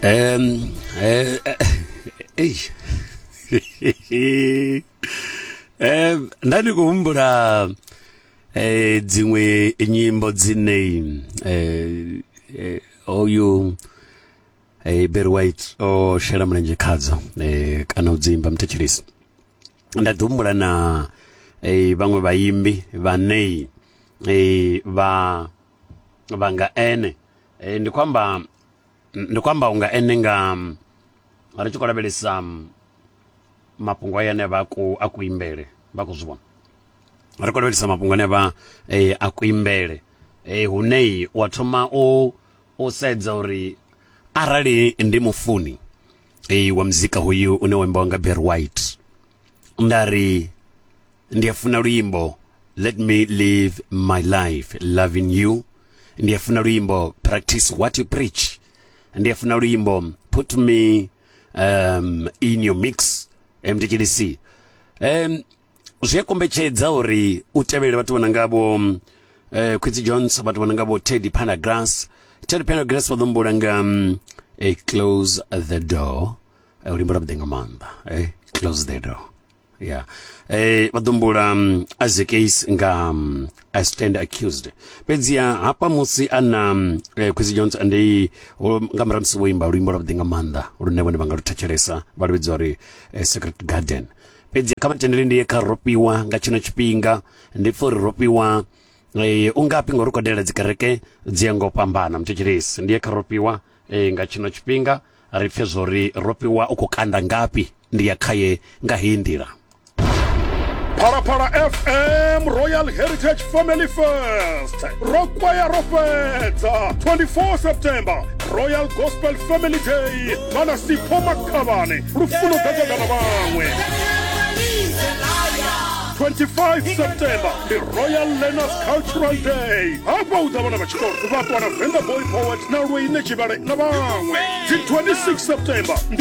Um, uh, um, nda ndi khou humbula eh dziṅwe nyimbo dzine eh, eh oyu eh Barry White o shela mulenzhe khadzo eh kana u dzimba mthetshelisi nda ḓi humbula na eh vhaṅwe vhaimbi vhane eh vha vha nga ene e, ndi khou amba ndi khou amba unga ene nga ri tshi khou lavhelesa mafhungo aya ane vha a kuimbele vha khou zwi vhona ri khou lavhelesa mafhungo ane vha e, a kuimbele e, hune wa thoma u u sedza uri arali ndi mufuni e, wa muzika hoyu une wa imbiwa nga Barry White nda ri ndi a funa luimbo let me live my life loving you ndi a funa luimbo practice what you preach ndi a funa luimbo put me um, in your mix mdkdc um, zwi a kombetshedza uri u tevhelele vhathu vhona ngavho um, eh, quincy jones vhathu vhona ngavho teddy panagrass teddy panagrass vha ḓo mbula nga um, eh, close the door Eh, luimbo lwa vhuḓi nga maanḓa eh, close the door ya eh, vha ḓumbula um, mm, as a case nga um, a stand accused fhedziha hafha musi a na um, eh, quisi jones ndi nga murahu musi vho imba luimbo lwa vhuḓi nga maanḓa lune vhone vha nga lu thetshelesa vha lu vhidzwa uri eh, secret garden fhedzi kha vhatendeli ndi ye kha rofhiwa nga tshino tshifhinga ndi pfa uri rofhiwa eh, u ngafhi ngori u khou dalela dzikereke dzi ya ngo fhambana muthetshelesi ndi ye kha rofhiwa Ee, nga tshino tshifhinga ri pfe zwo ri ro fhiwa u khou kanda ngafhi ndi ya khaye nga heyi nḓila. Phalaphala FM Royal Heritage Family Fest ro kwaya ro fhedza 24 September Royal Gospel Family Day vhana Sipho Makhavhane lufuno ḓa ṱoḓa na vhaṅwe 25 september ndi royal learners cultural day hafha u ḓa vhana vha tshikolo vha ṱwana venga boy poet na lweine tshivhale na vhaṅwe dzi 26 september ndi